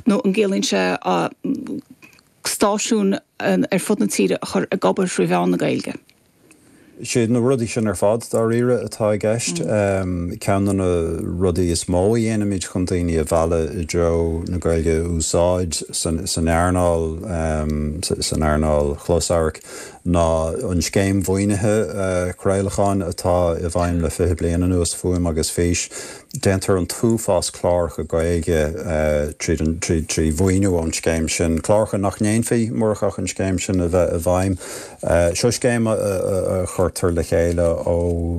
nó an gciallaíonn sé stáisiúin ar fud na tíre a chur ag obair trí mheán na Gaeilge? Is iad na rudaí sin ar fad, dáiríre, atá i gceist. Ceann de na rudaí is mó a dhéanaimid chun daoine a mhealladh i dtreo na Gaeilge a úsáid san earnáil, san earnáil chlosamhairc, ná an scéim mhaoinithe craolacháin atá i bhfeidhm le fiche bliain anuas, Fuaim agus Fís. Déantar an t-uafás cláracha Gaeilge trí mhaoiniú ón scéim sin, cláracha nach ndéanfaí murach ach an scéim sin a bheith i bhfeidhm. Seo scéim a chuirtear le chéile ó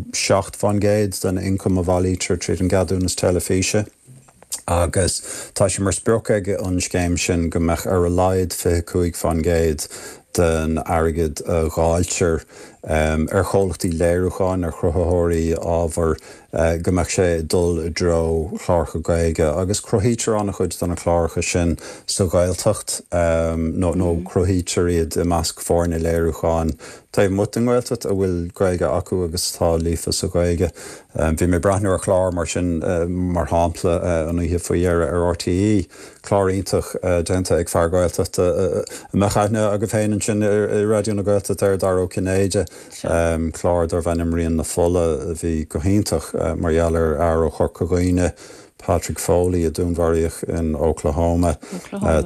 seacht faoin gcéad den ioncam a bhailítear tríd an gceadúnas teilifíse agus tá sé mar sprioc ag an scéim sin go mbeadh ar a laghad fiche cúig faoin gcéad den airgead a dháiltear ar chomhlachtaí léiriúcháin, ar chruthaitheoirí ábhair. go mbeadh sé ag dul i dtreo chláracha Gaeilge agus cruthaítear an-chuid de na cláracha sin sa Ghaeltacht nó cruthaítear iad i measc foirne léiriúcháin taobh amuigh den Ghaeltacht a bhfuil Gaeilge acu agus atá líofa sa Ghaeilge. Bhí mé ag breathnú ar chlár mar sin, mar shampla, an oíche faoi dheireadh ar RTÉ, clár iontach déanta ag fear Gaeltachta a mbeadh aithne agaibh féin ansin i Raidió na Gaeltachta air, Dara Ó Cinnéide. Clár darbh ainm Rian na Fola a bhí go hiontach mar gheall ar fhear ó Chorca Dhuibhne, Patrick Foley, a dúnmharaíodh in Oklahoma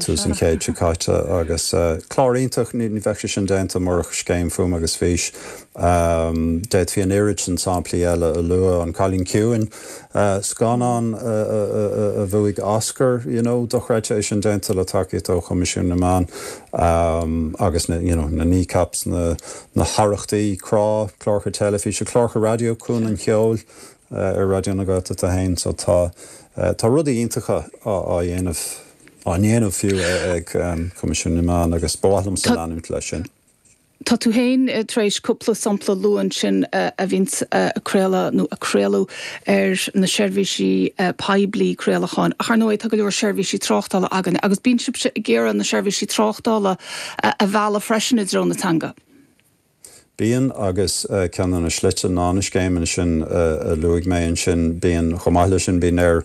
tús an chéid seo caite agus clár iontach, ní bheadh sé sin déanta murach Scéim Fuaim agus Fís. D'fhéadfaí an oiread sin samplaí eile a lua, An Cailín Ciúin, scannán a bhuaigh Oscar, you know dochreidte, é sin déanta le tacaíocht ó Choimisiún na Meán, agus na you know Kneecap, na. Na hEithreachtaí, Crá, cláracha teilifíse, cláracha raidió, Cuan an Cheoil ar Raidió na Gaeltachta féin. So tá, tá rudaí iontacha á, á dhéanamh, á ndéanamh fiú ag Coimisiún na Meán agus ba mhaith liomsa leanúint leis sin. Tá tú féin tar éis cúpla sampla a lua ansin a bhíonn á gcraoladh nó a craoladh ar na seirbhísí poiblí craolacháin. Ar ndóigh tá go leor seirbhísí tráchtála againn agus bíonn sibhse ag iarraidh na seirbhísí tráchtála a mhealladh freisin i dtreo na teanga. Bíonn, agus ceann de na slite ná na scéimeanna sin a luaigh mé ansin. Bíonn, chomh maith leis sin, bíonn ar,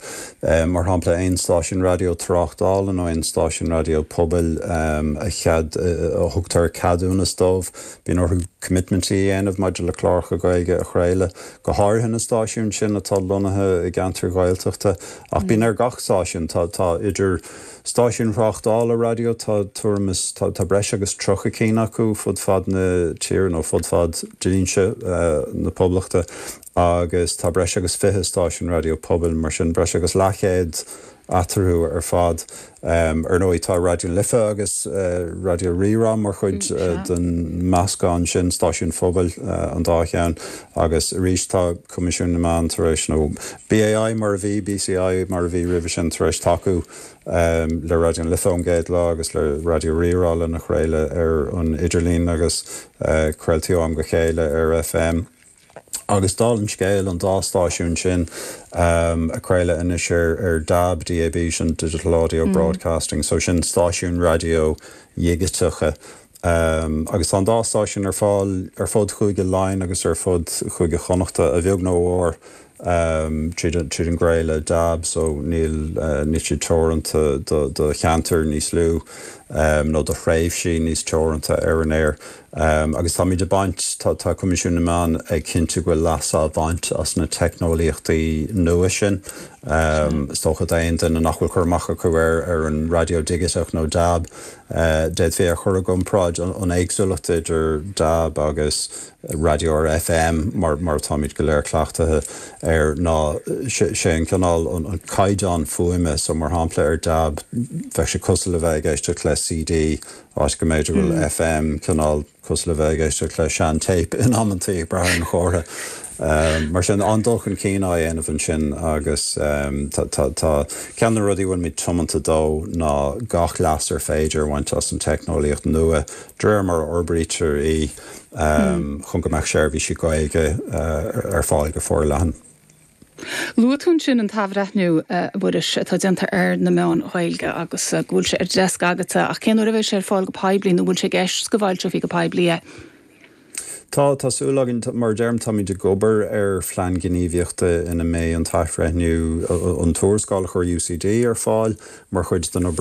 mar shampla, aon stáisiún raidió tráchtála nó aon stáisiún raidió pobail a chead, a thugtar ceadúnas dóibh, bíonn orthu coimitmintí a dhéanamh maidir le cláracha Gaeilge a chraoladh, go háirithe na stáisiúin sin atá lonnaithe i gceantair Ghaeltachta. Ach bíonn ar gach stáisiún, tá idir. Stáisiúin thráchtála raidió, tá tuairim is, tá breis agus tríocha ceann acu fud fad na tíre, nó fud fad dlínse na Poblachta, agus tá breis agus fiche stáisiún raidió pobail, mar sin breis agus leathchéad eatarthu ar fad. Ar ndóigh tá Raidió Life agus Raidió Rí-Rá mar chuid den mheascán sin, stáisiúin phobail an dá cheann, agus arís tá. Coimisiún na Meán tar éis, nó BAI mar a bhí, BCI mar a bhí roimhe sin, tar éis tacú le Raidió na Life ón gcéad lá agus le Raidió Rí-Rá lena chraoladh ar an idirlíon agus craoltaí ó am go chéile ar FM agus dála an scéil an dá stáisiún sin ag craoladh anois ar dab, DAB, sin Digital Audio Broadcasting, so sin stáisiúin raidió dhigiteacha. Um, agus tá an dá stáisiún ar fáil ar fud Chúige Laighean agus ar fud Chúige Chonnachta, a bheag nó a mhór, um, tríd an, tríd an gcraoladh dab, so níl, eh, níl siad teoranta do, do cheantair níos lú, um, nó do thréimhsí níos teoranta ar an aer. Um, agus táimid ag baint, tá, tá Coimisiún na Meán ag cinntiú go bhfuil leas á bhaint as na teicneolaíochtaí nua sin. Um, is dócha d'aon duine nach bhfuil cur amach acu ar, ar an raidió digiteach nó dab, D'fhéadfaí é a chur i gcomparáid an éagsúlacht idir dab agus raidió ar FM mar atáimid go léir cleachtaithe air ná sé an cineál, an caighdeán fuaime. So, mar shampla, ar dab bheadh sé cosúil le bheith ag éisteacht le CD áit go mb'fhéidir go bhfuil FM cineál, cosúil le bheith ag éisteacht le sean-téip in amantaí ag brath ar an gcomhartha. Mar sin, an-dul chun cinn á dhéanamh ansin agus tá ceann de na rudaí a bhfuil muid tiomanta dó ná gach leas ar féidir a bhaint as an teicneolaíocht nua de réir mar a fhorbraítear í chun go mbeadh seirbhísí Gaeilge ar fáil go forleathan. Luaigh tú ansin an t-athbhreithniú, a Mhuiris, atá déanta ar na meáin Ghaeilge agus go bhfuil sé ar deasc agatsa, ach cén uair a bheidh sé ar fáil go poiblí nó an bhfuil sé i gceist go bhfoilseofaí go poiblí é? Tá, tá súil againn. Mar a deirim, táimid ag obair ar phlean gníomhaíochta ina mbeidh an t-athbhreithniú, an tuarascáil a chuir UCD ar fáil mar chuid den obair,